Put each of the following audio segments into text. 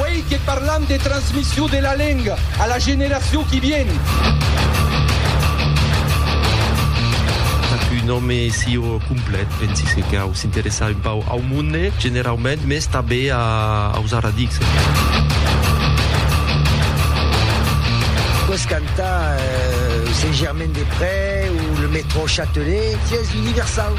Uèi que parlam de transmission de la lenga a la generacion qui vien. Pas un òme sieu complet, pensi se cau s'interessar un pauc au monde generaument, mès tanben aus arradics. Pòs cantar Saint-Germain-des-Près o le Metro Châtelet, sies universau.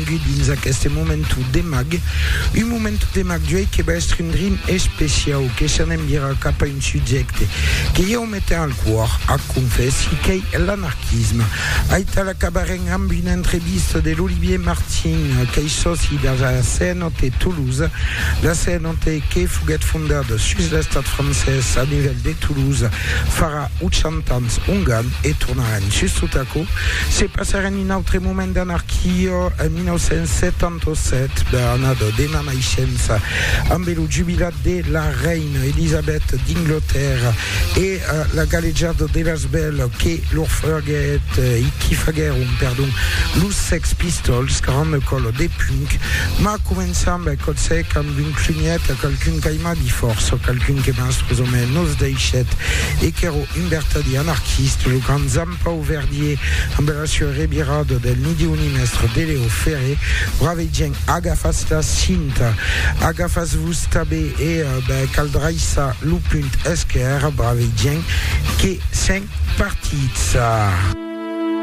Benvengut dins aqueste momentu de mag, un momentu de mag d'uèi que va èstre un drin especiau, que s'anem virar cap a un subjècte que ieu metem al còr, ac confèssi, qu'ei l'anarquisme. Aital acabarem amb una entrevista de l'Olivier Martin, qu'ei sòci de la CNOT Toulouse, la CNOT que foguèt fondada sus l'estat francés a nivèl de Toulouse farà 80 ans ongan e tornarem sus tot aquò, se passarem Un autre moment d'anarquia en 1977, bèth anada dena naishença, ambe lo jubilat de la reina Elisabet d'Inglotèrra e la galejada de las bèls que lor faguèt e qui faguèron, perdon, los Sex Pistols, caramba còla de punk, mas començam bèth còth sec amb un clunièt a qualqu'un qu'aimavi fòrça, qualqu'un que mastrosament nos deishèt e qu'èra un vertadier anarquista, lo grand Zam. Pau Verdier, amb era sua revirada del Midi Unimestre de Leo Ferré, ua vegent, agafatz la cinta, agafatz-vos tabé e cal draissar lo punt esquèrre, bravegent, que sèm partits.